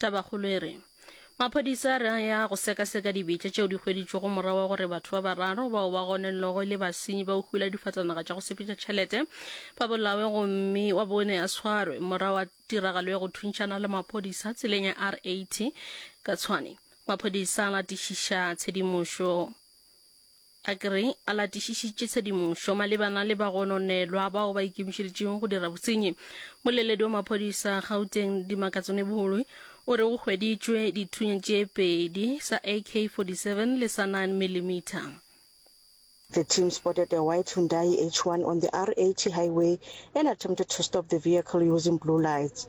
Tabakgolo e re, Maphodisa a re a ya go sekaseka dibetša tšeo di hweditšwego morago wa gore batho ba bararo bao ba gonellogo e le basenyi ba go hula difatanaga tša go sepetša tšhelete ba bolawe gomme wa bone a tshwarwe morago wa tiragalo ya go thuntšhana le maphodisa tseleng ya R80 ka Tshwane. Maphodisa a latišiša tshedimošo Agri a latišišitše tshedimošo malebana le bagononelwa bao ba ikemišeditšego go dira bosenyi. Moleledi wa maphodisa Gauteng, Dimakatšone Boholwi, o re go hweditšwe dithunya tše pedi, sa AK-47 le sa 9 millimeter. The team spotted a white Hyundai H1 on the R80 highway and attempted to stop the vehicle using blue lights.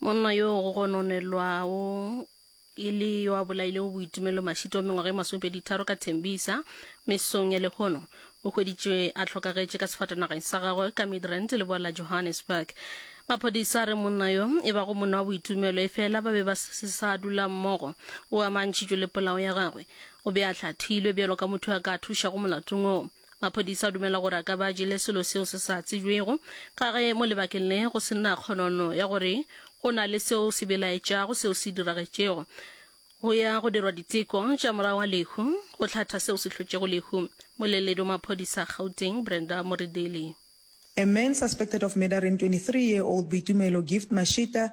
monna yo go gononelwago e le yo a bolailego boitumelo mašito mengwaga e masomepeditharo ka thembisa mesong ya lehono o hweditšwe a hlokagetše ka sefatanageng sa gagwe ka midrand leboa la johannesburg maphodisa re monna yo e bago monna wa boitumelo e fela ba be ba se sa dula mmogo o amantšhitšwe le polao ya gagwe o be a hlathilwe bjalo ka motho a ka thušago molatong oo Maphodisa a dumela gore a ka ba a jele selo seo se sa tsebjwego ka ge mo lebakeng le go se na kgonono ya gore go na le seo se belaetšago seo se diragetšego. Go ya go dirwa diteko tša morago ga lehu go hlatha seo se hlotšego lehu. Moleledi wa maphodisa a Gauteng, Brenda Moredeli. A man suspected of murdering 23 year old Boitumelo Gift Mashita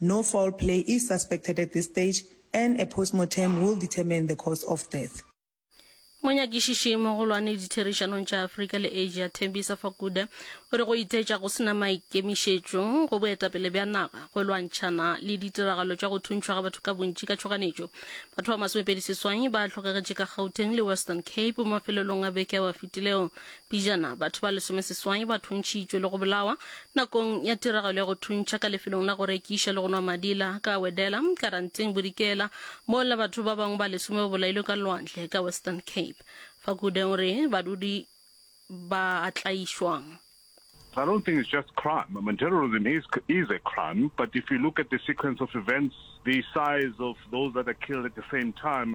No foul play is suspected at this stage and a postmortem will determine the cause of death. Monyakišiši mogolwane ditherišanong tša Afrika le Asia Thembisa Fakude o re go iteetša go se na maikemišetšo go boetapele bja naga go lwantšhana le ditiragalo tša go thuntšhwa ga batho ka bontši ka tšhoganetšo. Batho ba masomepedi seswai ba hlokagetše ka Gauteng le Western Cape mafelelong a beke ao a fetilego Pejana, batho ba lesomeseswai ba thuntšhitšwe le go bolawa nakong ya tiragalo ya go thuntšha ka lefelong la go rekiša le go nwa madi la Kawedela, Karanteng, Bodikela, mola batho ba bangwe ba lesome ba bolailwe ka lwandle ka Western Cape. Fakude o re badudi ba a tlaišwa. I don't think it's just crime. I mean, terrorism is is a crime, but if you look at the sequence of events, the size of those that are killed at the same time,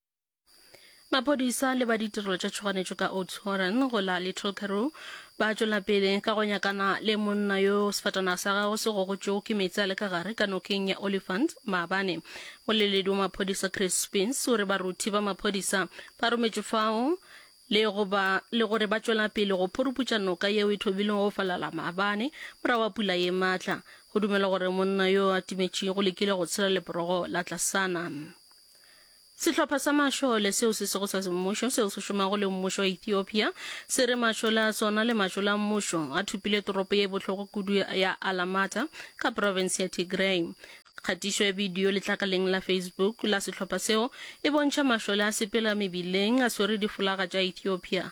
Maphodisa le ba ditirelo tša tšhoganetšo ka Oudtshoorn go la Little Karoo ba tšwela pele ka go nyakana le monna yo sefatanaga sa gagwe se gogotšwego ke meetse a le ka gare ka nokeng ya Olifant maabane. Moleledi wa maphodisa Chris Spence o re baruthi ba maphodisa ba rometšwe fao le go ba le gore ba tšwela pele go phuruputša noka yeo e thobilego go falala maabane morago ga pula ye matla. Go dumelwa gore monna yo a timetšego o lekile go tshela leporogo la tlasana. Sehlopha sa mašole seo se sego sa semmušo seo se šomago le mmušo wa Ethiopia se re mašole a sona le mašole a mmušo a thopile toropo ye bohloko kudu ya Alamata ka province ya Tigray. Kgatišo ya bidio letlakaleng la Facebook la sehlopha seo e bontšha mašole a sepela mebileng a swere difolaga tša Ethiopia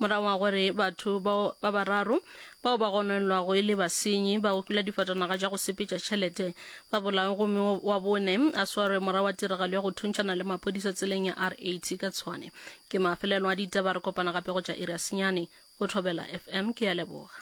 Morago ga gore batho bao ba bararo bao ba gononelwago e le basenyi ba ukula difatanaga tša go sepetša tšhelete ba bolawe gomme wa bone a swarwe morago ga tiragalo ya go thuntšhana le maphodisa tseleng ya R80 ka Tshwane. Ke mafelelo a ditaba, re kopana gape go tša iri ya senyane go Thobela FM. Ke a leboga.